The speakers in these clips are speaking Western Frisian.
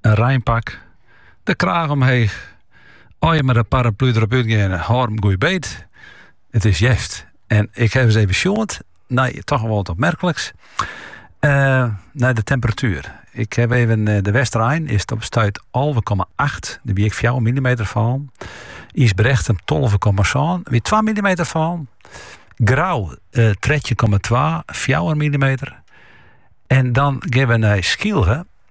In reinpak, de kraach omheech, as je mei de paraplu derop útgeane, hâld him goed beet. It is hjerst. En ik ha it even sjoend nei toch wol wat opmerkliks. Uh, nei de temperatuer. Ik ha even eh, de Westerein is op stuit 11,8. Dêr wie ek 4 mm fallen. Ysbrechtum 12,7. Wie 2 mm fallen. Grou uh, 13,2. 4 mm. En dan geane we nei Skylge.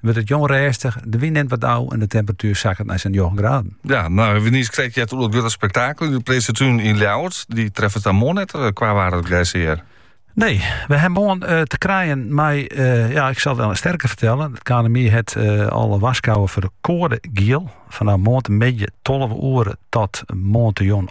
wurdt it jûn rêstich, de wyn nimt wat ôf en de temperatuer sakket nei sa'n njoggen graden. Ja, nou, we ha niiskrekt heard oer grutte spektakel yn de Prinsetún yn Ljouwert. Dy treffe it dan moarn net eh, kwa waar het grijzeer. Nee, we ha moarn eh, te krijen mei eh, ja, ik sil it wol even sterker fertelle. It KNMI hat uh, al warskôge foar de koade giel. Fanôf moarntemiddei 12 oere tot moarn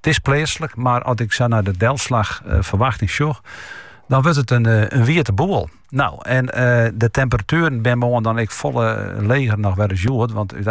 It is pleatslik, mar as ik sa nei de delslachferwachting sjoch, dan wurdt it in, in wiete boel. Nou, en de temperatueren binne moarn dan ek folle leger noch wer as hjoed, want